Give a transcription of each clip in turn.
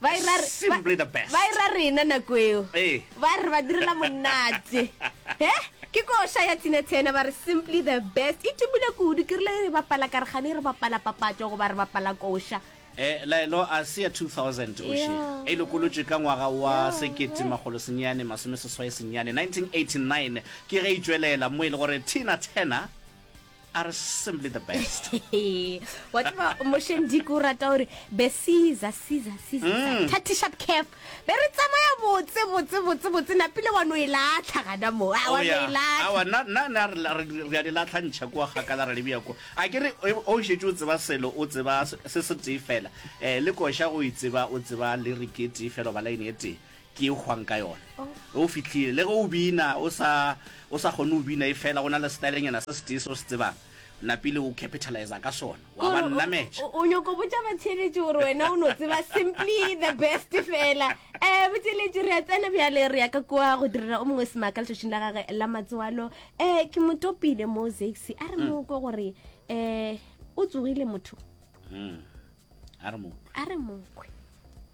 ba e ra re- Simply the best. ba e ra rena nako eo Ee. ba re ba direla monate e ke ko sha ya tsina tshena ba re simply the best e tumile kudu ke rile e re bapala kargane e re bapala papatso goba re bapala kosha Eh, laelo a se ya 2000 oše Yeah. e lokolotše ka ngwaga wa Yeah, sekete magolo senyane masome seswai senyane 1989 ke ge e tšwelela mo e le gore tina turner are simply the best wa tseba mosheng diko o rata gore be caesar caesar caesar mm. thirty sharp calf be re tsamaya botse botse botse botse napile wa no e latlha gana mo a wa oh, no e latlha re a di latlhantšha kua gakala re lebja ko a ke re o šetse o tseba selo o tseba se se tee fela um le koša go e tseba o tseba le re ke tee fela ba line e tee Ke e hwang ka yona. Ge o fihlile, le ge o bina o sa, o sa kgone go bina, e fela go na le setaelenyana se setee se o se tsebang, o napile o capitaliza ka sona, wa ba nnametša. O, o, o nyoko botša batheeletši gore wena o no tseba simply the best fela. Eh, botheeletši, re a tsena bjale, re ya ka kua go direla o mongwe semaka letšatšing la gage la matswalo. Eh, ke mo topile mo Zaxi, a re mo kwe gore eh o tsogile motho, Mm. A re mo. a re mo kwe.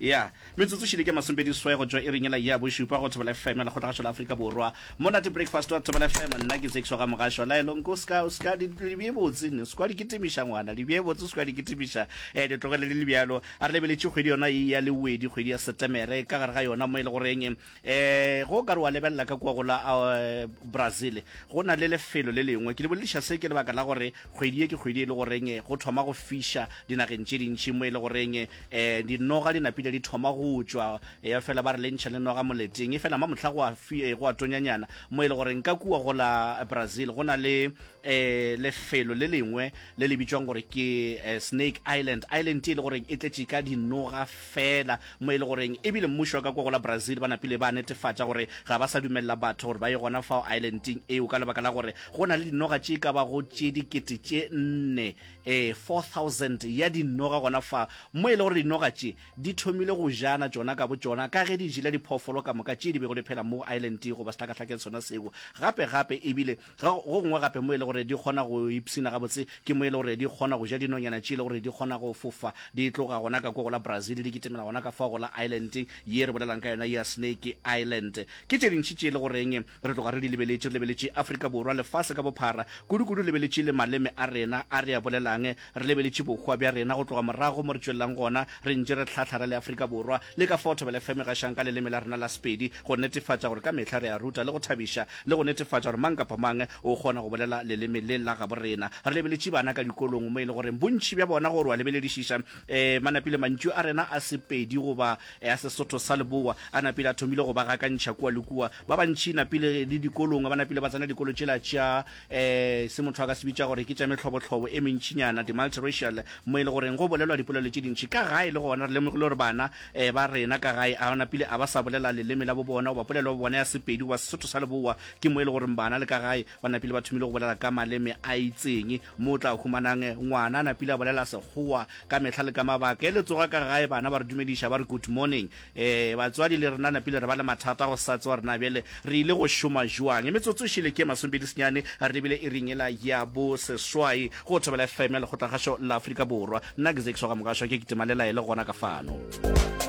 Ya. Metsotso šele ke masomepedi seswai go tšwa iring yela ya bošupa go Thobela FM ya Lekgotlagašo la Afrika Borwa. Monate Breakfast wa Thobela FM, nna ke Zekiso Gamogashoa. Laelo, nko o ska, o ska, di, di bje botse, o ska di kitimiša ngwana, di bje botse, o ska di kitimiša. Eh, di tlogele di le bjalo. A re lebeletše kgwedi yona e ya lewedi, kgwedi ya Setemere, ka gare ga yona mo e le goreng E, ge o ka re wa lebelela ka kua go la uh, Brazil, go na le lefelo le lengwe. Ke le bolediša se ke lebaka la gore kgwedi e ke kgwedi e le goreng eh, go thoma go fiša dinageng tše dintši mo e le goreng eh, eh dinoga di napile di thoma go tšwa e fela ba re le ntšha le noga moleteng e fela ma mohla go a, fi, eh, go a tonyanyana mo e le goreng ka kua go la Brazil go na le eh, lefelo le lengwe le le bitšwang gore ke eh, snake island island e le goreng e tletše ka dinoga fela mo e le goreng ebile mmušo wa ka kwa go la brazil ba napile ba netefatša gore ga ba sa dumelela batho gore ba ye gona fao islandeng eo ka lebaka la gore go na le dinoga tše ka bago tše dikete tše nne eh, 4000 ya dinoga gona fa mo e le gore dinoga tše di thomile go jana tšona ka bo tšona ka ge di jela diphoofolo ka moka tše di bego di phela mo islandeng goba sehlakahlakeng sona seo gape gape ebile Ga go gongwe gape mo e le gore di kgona go ipshina gabotse ke mo e le gore di kgona go ja dinonyana tše e le gore di kgona go fofa di tloga gona ka kua go la Brazil di kitimela gona ka fao go la Ireland ye re bolelang ka yona ya Snake Island. Ke tše dintši tše e le goreng re tloga re di lebeletše, re lebeletše Afrika Borwa, lefase ka bophara, kudukudu lebeletše le maleme a rena a re a bolelang Re lebeletše bohwa bja rena go tloga morago mo re tšwelelang gona, re ntše re hlahla re le Afrika Borwa, le ka fao Thobela FM e gašang ka leleme la rena la Sepedi, go netefatša gore ka mehla re a ruta le go thabiša, le go netefatša gore mang kapa mang o kgona go bolela leleme le la gabo rena. Re lebeletše bana ka dikolong mo e le goreng bontši bja bona gore wa lebeledišiša, ee, ba napile mantšu a rena a Sepedi goba a Sesotho sa Leboa a napile a thomile go ba gakantšha kua le kua. Ba bantši napile le dikolong ba napile ba tsena dikolo tšela tša e se motho a ka se bitša gore ke tša mehlobohlobo e mentšinyana, di-multiracial, mo e le goreng go bolelwa dipolelo tše dintši. Ka gae le gona re lemogile gore bana e ba rena ka gae a napile a ba sa bolela leleme la bo bona goba polelo ya bo bona ya Sepedi goba Sesotho sa Leboa. Ke mo e le goreng bana le ka gae ba napile ba thomile go bolela ka maleme a itseng. Mo o tla humanang ngwana a napile a bolela Sekgowa ka mehla le ka mabaka. E le tsoga ka gae bana ba re dumediša ba re good morning. Ee, batswadi le rena napile re ba le mathata a go sa tsewa gore na bjale re ile go šoma joang. Metsotso e šele ke e masomepedi senyane re lebile iring yela ya bo seswai go Thobela FM ya lekgotlakgašo la Afrika Borwa. Nna ke Zakes wa ga Mokašwa, ke kitima le laele gona ka fano.